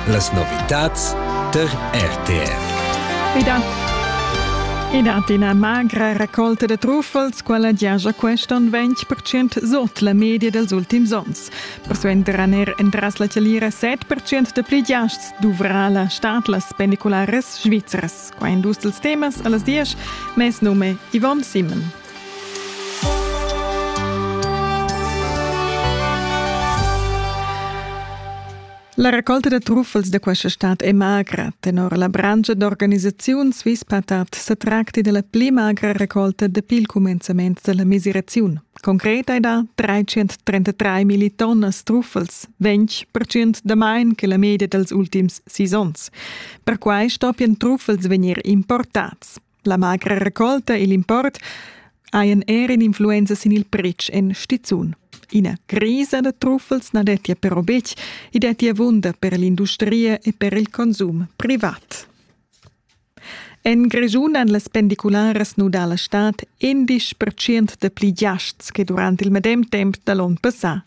Las novitads tar RTR. Ida. Ida d'ina magra raccolta da truffels, quella giaja quest'on 20% sot la media dels ultims ons. Persuenter han er entras la chalira 7% da pli giasts dovrà la stad las pendiculares svizras. Qua indus dels temas a las 10, mes nome Yvonne Simon. La raccolta da truffels da questa stad è magra. Tenor la branscha d'organisaziun Swisspatat sa tracti della pli magra raccolta dapi il cumenzament della mesiraziun. Concret hai da 333 millitonnas truffels, 20% damain che la media dels ultims sis onns. Perquai stoppian truffels vegnir importats. La magra raccolta e l'import hajan er in'influenza sin il pretsch en stizun. Ina crisa da truffels na dettia però betg, i dettia wunder per l'industria e per il consum privat. En Grischun han las pendicularas nudà la stad endisch percent da pli giasts che durant il medem temp da l'onn passà.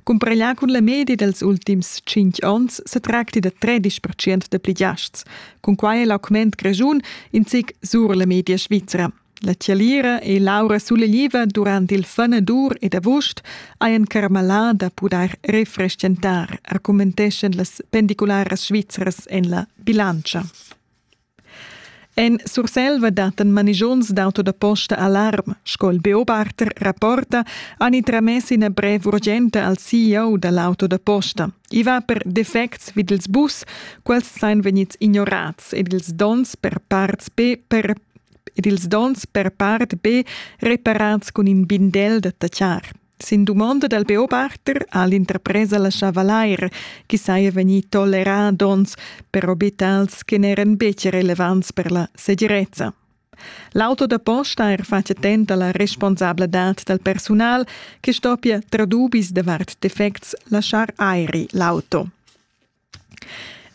Cumpareglià cun la media dals ultims tschintg onns sa tracti da 13% da pli giasts, Cunquai è l'augment grischun in zic sur la media svizra. La tialira e l'aura sulegliva durant il fanadur ed avust hajan carmalà da pudair refrestgentar, argumenteschan las pendicularas svizras en la bilantscha. En Surselva dattan manigiuns d'auto da posta alarm, sco il Beobachter rapporta, han tramess ina brev urgenta al CEO da l'auto da posta. I va per defects vid ils bus, quels sain vegnids ignorats ed ils dons per parts be per ed ils dons per part be reparats cun in bindel da tatschar. Sin dumonda dal beobachter ha l'interpresa laschà valair chi saja vegnì tolerà dons per obitals che n'eran betg relevants per la segirezza. L'auto da posta er fatg attent a la responsabladad dal persunal che stoppia, tra dubis davart defects, laschar airi l'auto.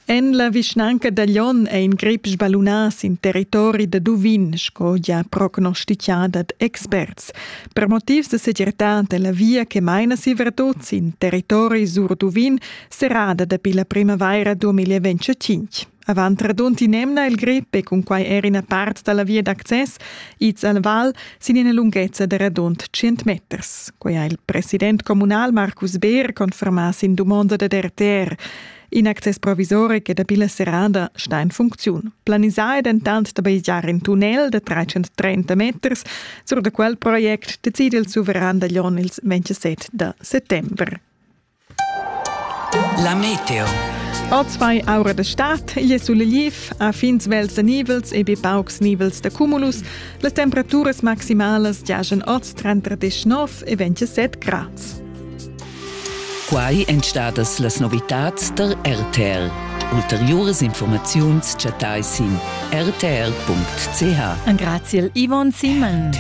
En la vischnanca da Lyon è in grip sballunà sin territori da Duvin, sco gia prognostitgà dad experts. Per motivs da segirtad è la via che maina Sivertot sin territori sur Duvin serrada dapi la primavaira 2025. Avant radund in'emna il grip e cunquai er ina part da la via d'access ids al val sin ina lunghezza da radund 100 meters. Quai ha il president communal Markus Beer confermà sin dumonda da RTR. In access provisoric e dapi la serrada sta in funcziun. Planisà è dentant da bajegiar in tunnel da 330 meters. Sur da quel project decide il suveran da Jon ils 27 da settembre. La meteo. Ozwei aura de stad, igl è sul lief, a fins vels de nivels e be paucs nivels de cumulus, las temperaturas maximalas giajan oz tra 39 e 27 grads. Quai èn stadas las novitads der RTL. Ulteriuras informaziuns chattai sin rtr.ch. Graziel Yvonne Simon.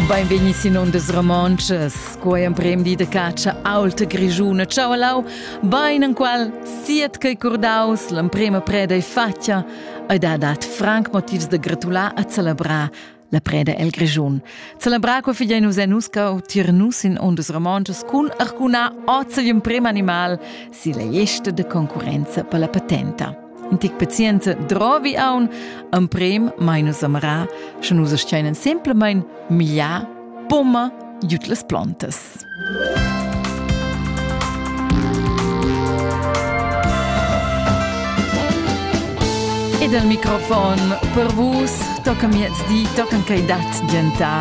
Beinvegni sin ondas romontschas, quei emprem di de catscha aulta grigiuna. Ciao lau, bein enqual siet chei curdaus l'emprema preda e fatja, ei da dat franc motivs de gratular a celebrar la preda el Grischun. Celebrar co figlia nus enusca u tir nus in ondas romontschas cun arcuna ozzel emprem animal si la gesta de concurenza per la patenta. In tic pazienza drovi aun, emprem mai nus amara, sche nus steinen semplamein migliar, pomma giud las plontas. Ed al microfon per vus tocca miezdi, tocca quei dat gentar.